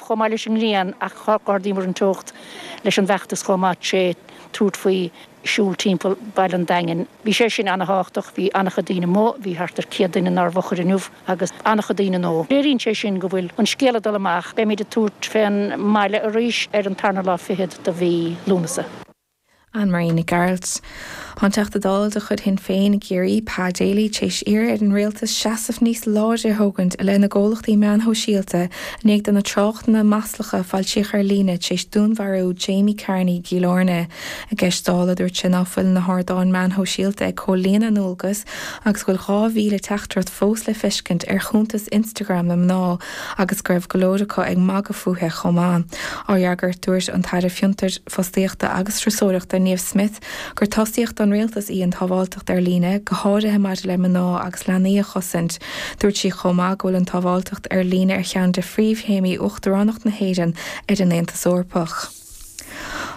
chomh maith leis an ngrian ach d'ardaíomar an teocht leis an bhfeachtas chomh maith tré tabhairt faoi siúl timpeall baile an Daingin. Bhí sé sin an-tábhachtach, bhí an-chuid daoine amuigh, bhí thart ar 100 duine inár bhfochair inniu agus an-chuid daoine nua. Léiríonn sé sin go bhfuil an scéal ag dul amach, beimid ag tabhairt fén mbaile arís ar an tarna lá fichead do mhí Lúnasa. Anne Marie Nic Gearailt, An Teachta Dála de chuid Shinn Féin i gCiarraí, Pa Daly, tar éis iarraidh ar an Rialtas seasamh níos láidre a thógaint i leith na gcomhlachtaí meáin shóisialta i ndiaidh na tráchtanna maslacha a foilsíodh ar líne tar éis dúnmharú Jamie Carney i gCill Airne. I gceist Dála, dúirt sé ná fuil na hardáin meáin shóisialta ag comhlíonadh a ndualgas agus go bhfuil 2,000 teachtaireacht fós le feiscint ar chuntas Instagram na mná agus go raibh go leor acu ag magadh fúithe chomh maith. Á fhreagairt, dúirt an tAire Fiontar, Fostaíochta agus Turasóireachta, Niamh Smyth, gur tosaíocht don Rialtas í an tsábháilteacht ar líne, go háirithe maidir le mná agus leanaí a chosaint. Dúirt sí chomh maith go bhfuil an tsábháilteacht ar líne ar cheann de phríomhthéamaí Uachtaránacht na hÉireann ar an Aontas Eorpach.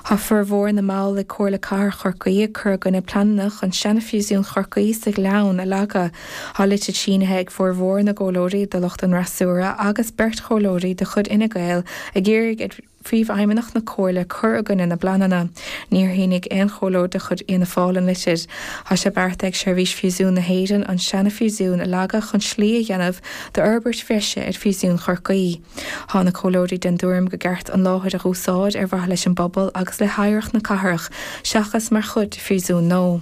Tá formhór na mball ag Comhairle Cathrach Chorcaí ag cur i gcoinne pleananna chun seana-phríosún Chorcaí sa Ghleann a leagadh. Tá litir sínithe ag formhór na gcomhairleoirí de lucht an fhreasúra agus beirt chomhairleoirí de chuid Fhine Gael ag iarraidh Príomhfheidhmeannach na Comhairle cur i gcoinne na bpleananna. Níor shínigh aon chomhairleoir de chuid Fhianna Fáil an litir. Tá sé beartaithe ag Seirbhís Phríosúin na hÉireann an seana-phríosún a leagadh chun slí a dhéanamh do fhorbairt bhreise ar phríosún Chorcaí. Tá na comhairleoirí den dtuairim gur ceart an láthair a dh'úsáid ar mhaithe leis an bpobal agus le hoidhreacht na cathrach seachas mar chuid de phríosún nua.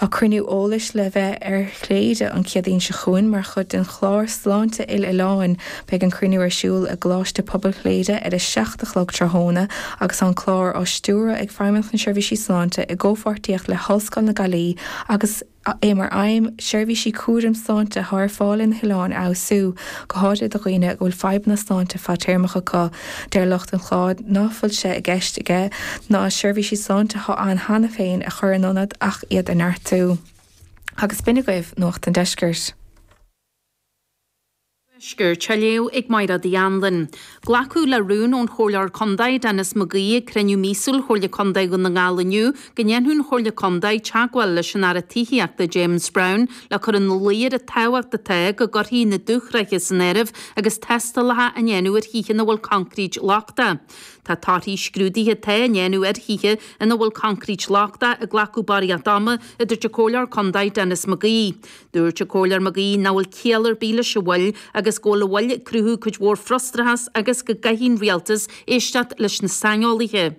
Tá cruinniú eolais le bheith ar Chléire an Chéadaoin seo chúinn mar chuid den chlár Sláinte Uile-Oileáin. Beidh an cruinniú ar siúl i gColáiste Pobail Chléire ar a seacht a chlog tráthnóna agus tá an clár á stiúradh ag Feidhmeannacht na Seirbhísí Sláinte i gcomhpháirtíocht le hOllscoil na Gailí agus é mar aidhm seirbhísí cúraim sláinte atá ar fáil ar na hoileáin a fheabhsú, go háirithe do dhaoine go bhfuil fadhbanna sláinte fadtéarmacha acu. Deir lucht an chláir ná fuil sé i gceist aige na seirbhísí sláinte atá ann cheana féin a chur in ionad ach iad a neartú. Agus b'in agaibh Nuacht an Deiscirt. Nuacht an Tuaiscirt á léamh ag Máiread Uí Annlain. Glacadh le rún ón Chomhairleoir Contae Denis McGee ag cruinniú míosúil Chomhairle Contae Dhún na nGall inniu Go ndéanfadh an Chomhairle Contae teagmháil leis an Aire Tithíochta, James Browne, le cur in luí air an tábhacht atá go gcuirfí na dúshraithe san áireamh agus tástálacha á ndéanamh ar thithe ina bhfuil concrete lochtach. Tá torthaí scrúduithe atá á ndéanamh ar thithe ina bhfuil concrete lochtach ag glacadh barraíocht ama, a dúirt an Comhairleoir Contae Denis McGee. Dúirt an Comhairleoir McGee nach bhfuil ciall ar bith leis an mhoill agus go bhfuil an mhoill ag cruthú cuid mhór frustrachas agus go gcaithfidh an Rialtas éisteacht leis na saineolaithe.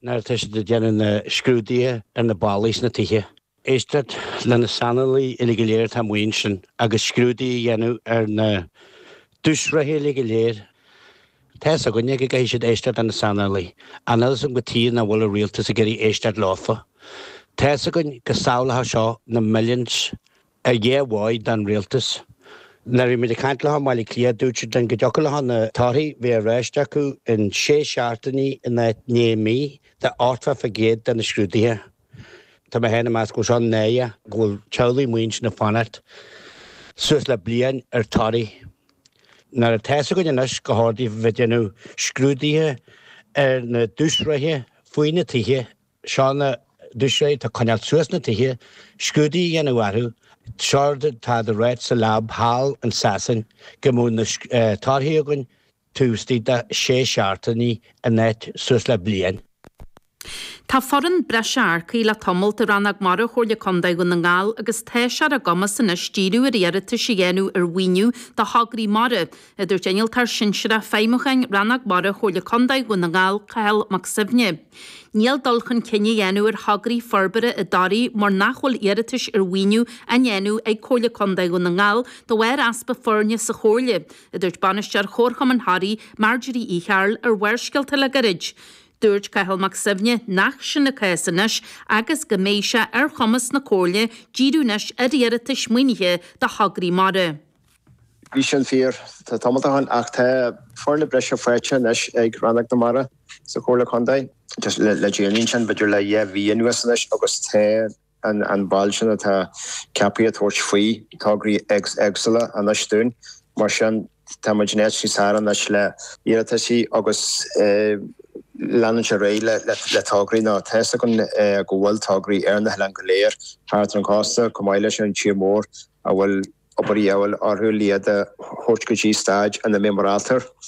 Nuair atá siad ag déanamh na scrúduithe ar na ballaí sna tithe, éisteacht le na saineolaithe uilig go léir atá amuigh ansin agus scrúdú a dhéanamh ar na dúshraithe uilig go léir. Tá fhios againne go gcaithfidh siad éisteacht le na saineolaithe. Níl fhios againn cad tuige nach bhfuil an rialtas ag iarraidh éisteacht leofa, tá fhios againn go sábhálfadh seo na milliúin Ar dhóigh mhaith don Rialtas. Nuair a bhí muid ag caint leofa i mBaile Átha Cliath dúirt siad linn go dtiocfadh leofa na torthaí a bheith ar ais acu in sé seachtainí in áit naoi mí de ochtó faoin gcéad de na scrúduithe. Tá mé féin ag meas go bhfuil seo náireach go bhfuil teaghlaigh amuigh ansin ag fanacht suas le bliain ar torthaí. Nuair atá fhios againn anois gur cheart daofa bheith ag déanamh scrúduithe ar na dúshraithe faoi na tithe seo na dúshraith atá ag coinneáilt suas na tithe, scrúdú a dhéanamh orthu, séard atá siad ag ráit sa lab thall in Sasain, go mbeadh na torthaí againn taobh istigh de shé seachtainí in áit suas le bliain. Tá foireann breise earcaithe le tamalt i Rannóg Mara Chomhairle Contae Dhún na nGall agus tá sé ar a gcumas anois díriú ar iarratais a dhéanamh ar mhaoiniú do thograí mara, a dúirt Innealtóir Sinsearach Feidhmiúcháin Rannóg Mara Chomhairle Contae Dhún na nGall, Cathal Mac Suibhne. Níl dul chun cinn á dhéanamh ar thograí forbartha i dToraigh mar nach bhfuil iarratais ar mhaoiniú á ndéanamh ag Comhairle Contae Dhún na nGall de bharr easpa foirne sa Chomhairle, a dúirt Bainisteoir Chomharchumann Thoraí, Marjorie Uí Chearbhaill ar Bharrscéalta le gairid. Dúirt Cathal Mac Suibhne nach sin an cás anois agus go mbeidh sé ar chumas na Comhairle díriú anois ar iarratais maoinithe do thograí mara. Bhí sin fíor tá tamalt ó shin ach tá foirne breise faighte anois ag Rannóg na Mara sa Chomhairle Contae. Just le déanaí ansin, b'fhéidir le dhá mhí anuas anois agus tá an ball sin atá ceaptha ag tabhairt faoi tograí éagsúla anois dúinn. Mar sin tá muid in áit níos fearr anois le iarrataisí agus leanúint ar aghaidh le tograí nó tá's againn go bhfuil tograí ar na hoileáin go léir thart ar an gcósta chomh maith leis an tír mór a bhfuil obair de dhíobháil orthu, le iad a thabhairt go dtí stage ina mbeidh muid ábalta.